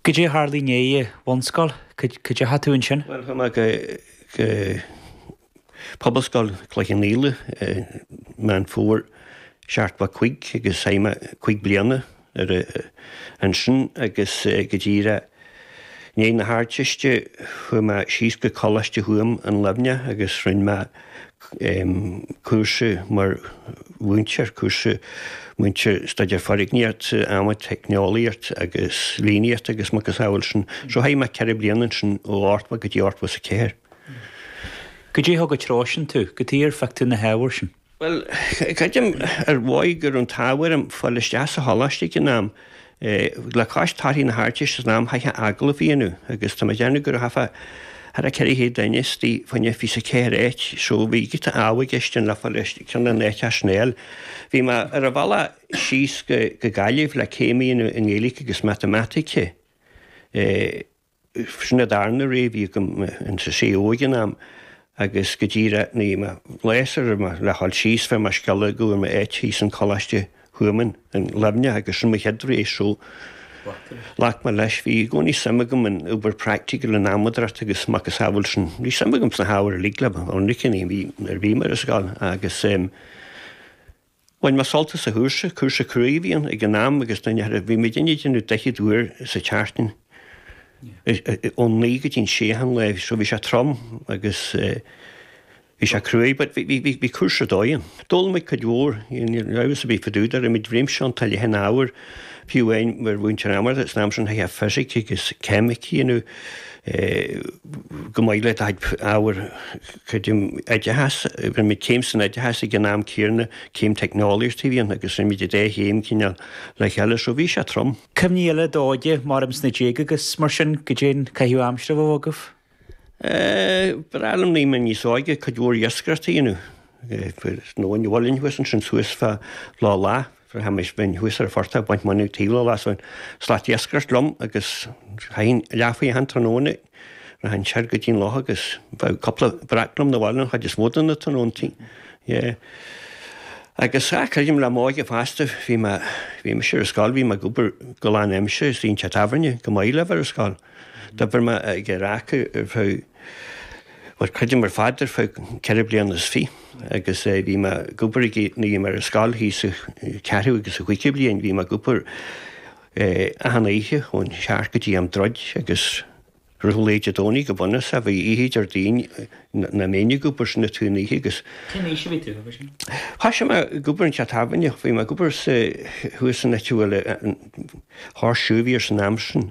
Cad é a tharla i ndiaidh an bhunscoil, cá deachaigh tú ansin? Bhuel, chuaigh mé go Pobalscoil Chloich Cheann Fhaola i Meán Fómhair, seachtó a cúig, agus chaith mé cúig bliana ansin agus go díreach i ndiaidh na hArdteiste, chuaigh mé síos go Coláiste Thuamhan i Luimneach agus rinne mé cúrsa mar mhúinteoir, cúrsa múinteoir Staidéar Foirgníocht, Adhmaid, Teicneolaíocht agus Líníocht agus macasamhail sin. So chaith mé ceithre bliana ansin ó ochtó go dtí ochtó is a ceathair. Cad é a thug an treo sin tú, cad chuige ar phioc tú na hábhair sin? Bhuel, creidim, ar bhealach go raibh an t-ádh orm fáil isteach sa choláiste ag an am, le cois torthaí na hArdteiste san am, chaithfeá agallamh a dhéanamh agus tá mé ag déanamh go raibh thar 400 duine istigh fá choinne fiche is a ceathair áit so bhí giota ádh i gceist ann le fáil isteach, ceann de na háiteacha sin a fháil. Bhí mé ar an bhealach síos go Gaillimh le céim a dhéanamh i nGaeilge agus Matamaitic. B'shin an darna rogha a bhí agam in UCG ag an am agus go díreach nuair a bhí mé ag gléasadh orm le ghabháil síos fuair mé scéala go bhfuair mé áit thíos in Coláiste Thuamhan in Luimneach agus sin mo chéad rogha so ghlac mé leis. Bhí i gcónaí suim agam in obair praiticiúil an adhmadóireacht agus macasamhail sin bhí suim agam sna hábhair uilig le bheith ionraic nuair a bhí mé ar scoil agus Bhain mé sult as an chúrsa. Cúrsa cruaidh a bhí ann ag an am agus duine thar a. Bhí muid ag déanamh daichead uair sa tseachtain ón naoi go dtí an sé achan lá so bhí sé trom agus bhí sé cruaidh but bhí, bhí, bhí, bhí cúrsa ar dóigh ann. D'fhoghlaim muid cuid mhór, níl amhras ar bith fá dtaobh de, rinne muid réimse iontach leathan ábhar, fiú amháin mar mhúinteoir adhmadóireacht san am sin, chaithfeá fisic agus ceimic, you know, chomh maith le do chuid ábhar creidim oideachas, rinne muid céim san oideachas ag an am céanna, céim teicneolaíocht a bhí ann agus rinne muid an dá chéim cineál le chéile so bhí sé trom. Cuimhní eile ó d'óige, abraimis sna déaga agus mar sin cad é an caitheamh aimsire a bhíodh agaibh? Ba bhreá liom nuair a bhí mé níos óige, cuid mhór iascaireacht a dhéanamh, nó an bhaile thuas ansin suas fá Loch Lagha. Bhraitheamaís bhínn thuas ar an phortach ag baint móna ag taobh Loch Lagha is an slat iascaireacht liom agus chaithinn leath-faoi achan tráthnóna rachainn soir go dtí'n loch agus bheadh cúpla breac liom na bhaile an chuid is mó de na tráthnóntaí. Yeah. Agus, ah, creidim le m'óige fosta, bhí mé, bhí mise ar scoil, bhí mé ag obair go lán-aimsire sa teach tábhairne, chomh maith le bheith ar scoil. D'obair mé ag an raca ar feadh. Bhuel, creidim ar fad ar feadh ceithre bliana is fiche agus bhí mé ag obair nuair a bhí mé ar scoil thíos sa ceathrú agus sa chúigiú bliain, bhí mé ag obair achan oíche ón seacht go dtí am druid agus i rith lae Dé Domhnaigh go bunúsach bhí oíche Déardaoin nach mbínn ag obair sin an t-aon oíche agus Cén aois a bhí tú ansin? Thoisigh mé ag obair i dteach tábhairne, bhí mé ag obair sa thuas an áit a bhfuil an háirsí a bhí air san am sin.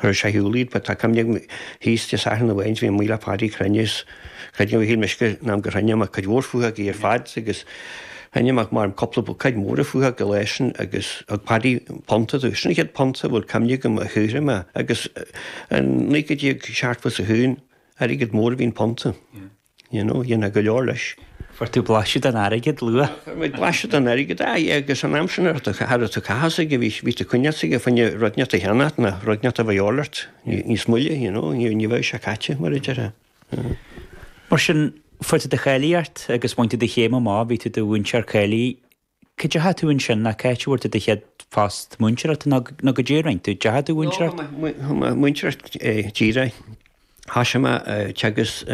Chur sa Iúil iad but tá cuimhne agam thíos Dé Sathairn a bhí ann is bhí mé le Páidí ag cruinniú is creid nó. Shíl mise an t-am gur chruinnigh mé cuid mhór prátaí ar fad agus chruinnigh mé measaim cúpla buicéad móra prátaí leis sin agus thug Páidí punt domh. Sin an chéad punt a bhfuil cuimhne agam a shaothraigh mé agus i naoi déag seachtó is a haon airgead mór a bhí i bpunt. You know, dhéanfaidh go leor leis. Fuair tú blaiseadh den airgead luath. Fuair muid blaiseadh den airgead, aye, agus an am sin thar a chaitheamh uilig, bhí tú ag ceannacht fá choinne na rudaí a bhí de dhíth ort, na rudaí a bheadh de dhíth ort níos moille, you know, ní bheadh sé caite, mar a déarfá. Mar sin, fuair tú do cháilíocht agus bhain tú do chéim amach, bhí tú i do mhúinteoir cáilithe. Cá dteachaigh tú ansin, nó cá háit a bhfuair tú do chéad phost múinteoireachta, nó caidé a rinne tú, an ndeachaigh tú le múinteoireacht? Chuaigh mé le múinteoireacht díreach, thosaigh mé ag teagasc.